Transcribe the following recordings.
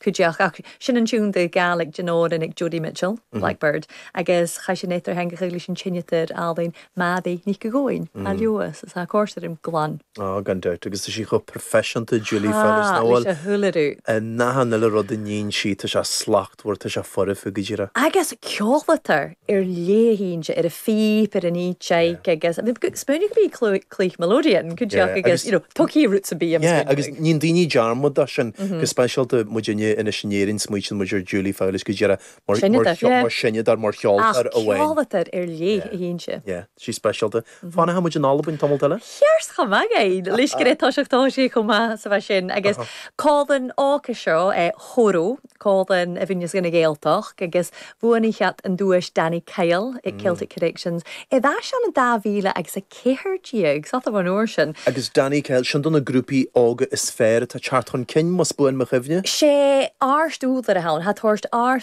Cuideachd sin an tionndadh Gàidhlig den òran aig Joni Mitchell, Blackbird, agus chaidh sin eadar-theangachadh leis an t-seinneadair álainn Meadhbh Nic Eoin, á leamhas is á co-sheirm glan. Á, gan dabht, agus tá sí chomh proifisiúnta, Julie Fowlis, nach bhfuil? Tá, leis a h-uile rud. In achan uile rud a níonn sí, tá sé slachtmhar, tá sé foirfe, go díreach. Agus ceòladair air leth innte air a' phìob, air an fhìdeig agus smaoinigh go mbeidh cluich melodeon cuideachd agus you know took he roots of beam smaoinigh. Yeah agus níonn daoine dearmad de sin go speisialta muid inniu anois in Éirinn smaointíonn muid ar Julie Fowlis go díreach mar mar mar seinneadair mar cheoltóir amháin. Ach ceoltóir ar leith atá inti. Yeah she's speisialta. Fanfaidh muid in Albain tamalt eile. Cheers chomh maith againn le scréad toiseach tá sé chomh maith 's math sin agus còmhlan òg a seo Hò-rò còmhlan a bhuineas dhan Ghàidhealtachd agus bhuannaich iad an duais Danny Kyle aig Celtic Connections bha sin an dá mhíle agus a ceathair déag 's fhada bhon uair sin. Agus Danny Kyle sin do na grúpaí óga is fearr atá teacht chun cinn más buan mo chuimhne? Sé àrd-ùrlar a th' ann a tha toirt ár.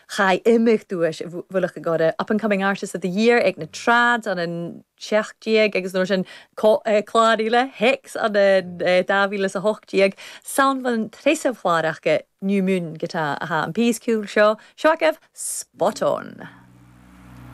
Chaith imeacht duais Mhullach an Ghoradh, Up and Coming Artist of the Year, ag na Trads an 17 agus an uair sin clár eile, Hex an 2018. 'S ann bhon treas clàr aca New Moon go teann. A tha am pìos ciùil seo, seo agaibh, Spot On!